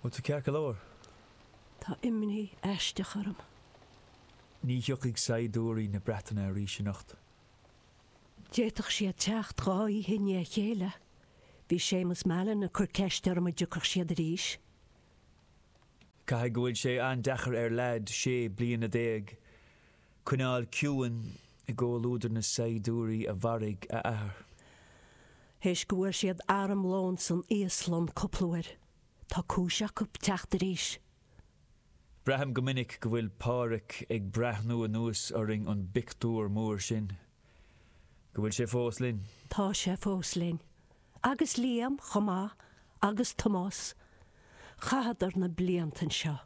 Bhfuil tú ceart go leor? Tá imní aisteach orm. Ní thiocfaidh saighdiúirí na Breataine arís anocht. D'fhéadfadh siad teacht dhá oíche i ndiaidh a chéile. Bhí Séamus Mallon ag cur ceiste orm an dtiocfadh siad arís. Caithfidh go bhfuil sé an-deacair ar leaid sé bliana déag Coinneáil ciúin i gcomhluadar na saighdiúirí a mharaigh a athair. Théis go bhfuair siad armlón san íoslach cúpla uair, tá cúis acu teacht arís. Braithim go minic go bhfuil Pádhraic ag breathnú anuas orainn ón bpictiúr mór sin. Go bhfuil sé fós linn. Tá sé fós linn. agus Liam chomh maith, agus Tomás. Chaitheadar na blianta anseo,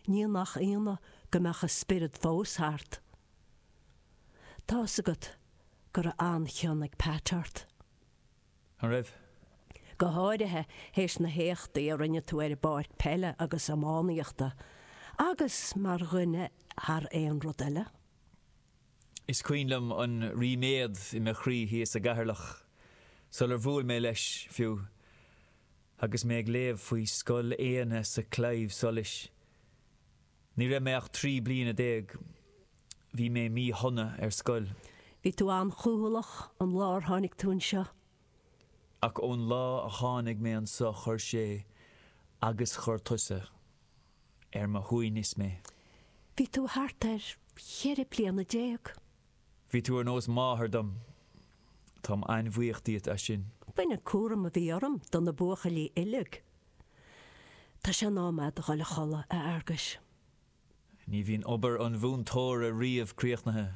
ní nach ionadh go mbeadh a spiorad fós thart. Tá's agat go raibh an-chion ag Pat ort. An raibh? Go háirithe théis na héachtaí a rinne tú ar an bpáirc peile agus iománaíochta, agus mar dhuine thar aon rud eile. Is cuimhin liom an ríméad i mo chroí thíos i gCeatharlach sular bhuail mé leis, fiú, agus mé ag léamh faoi Scoil Éanna sa Claidheamh Soluis. Ní raibh mé ach trí bliana déag. Bhí mé míshona ar scoil. Bhí tú an-chúthaileach an lá ar tháinig tú anseo. Ach ón lá a tháinig mé anseo chuir sé agus chuir tusa. ar mo shuaimhneas mé. Bhí tú thart ar cheithre bliana déag. Bhí tú ar nós máthar dom. Táim an-bhuíoch díot as sin. B'in an cúram a bhí orm do na buachaillí uilig. Tá sé in am a'd a ghoil a chodladh, a Fhearguis. Ní bhíonn obair an mhúinteora riamh críochnaithe.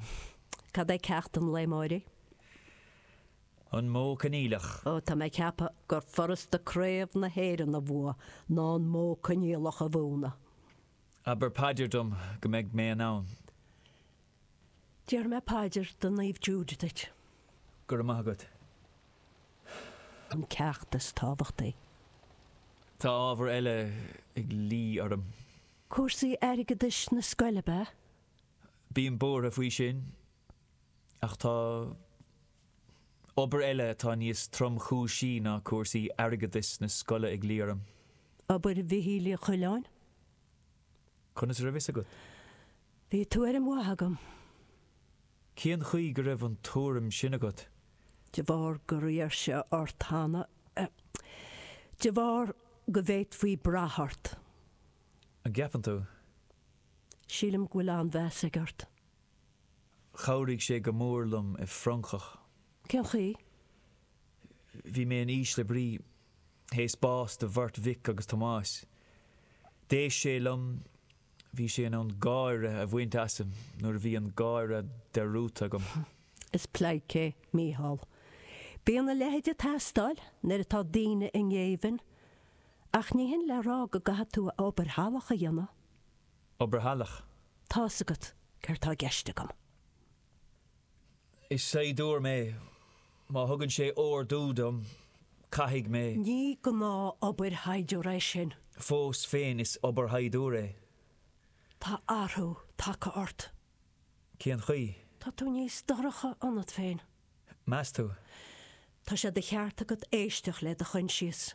Cad é ceacht an lae amáirigh? An Modh Coinníollach. Ó tá mé ag ceapadh gur furasta Craobh na hÉireann a bhua ná an Modh Coinníollach a mhúineadh. Abair paidir dom go mbeidh mé in ann. Déarfaidh mé paidir do Naomh Jude duit. Go raibh maith agat. an ceacht is tábhachtaí. Tá ábhar eile ag luí orm. Cúrsaí airgeadais na scoile, ab ea? Bím buartha faoi sin. Ach tá. Obair eile atá níos tromchúisí ná cúrsaí airgeadais na scoile ag luí orm. Obair Mhichíl Uí Choileáin. Conas a raibh fhios agat? Bhí tuairim mhaith agam. Cén chaoi go raibh an tuairim sin agat? De bharr gur iarr sé ort cheana é. De bharr go bhféadfaí brath ort. An gceapann tú? Sílim go bhfuil an-mheas aige ort. Chabhraigh sé go mór liom i bhFrongoch. Cén chaoi? Bhí mé in ísle brí. Théis bás do bheirt mhic agus Tomás, d'éist sé liom. Bhí sé in ann gáire a bhaint asam nuair a bhí an gáire de dhíth orm. Is pleidhce é Mícheál. Bíonn a leithéid ag teastáil nuair atá daoine i ngéibheann. Ach ní shin le rá go gcaithfidh tú a obair shalach a dhéanamh. Obair shalach. Tá's agat, céard tá i gceist agam? Is saighdiúir mé. Má thugann sé ordú dom, caithfidh mé. Ní gnáth-obair shaighdiúir é sin. Fós féin, is obair shaighdiúir é. Tá athrú tagtha ort. Cén chaoi? Tá tú níos dorcha ionat féin. Meas tú? Tá sé de cheart agat éisteacht le do choinsias.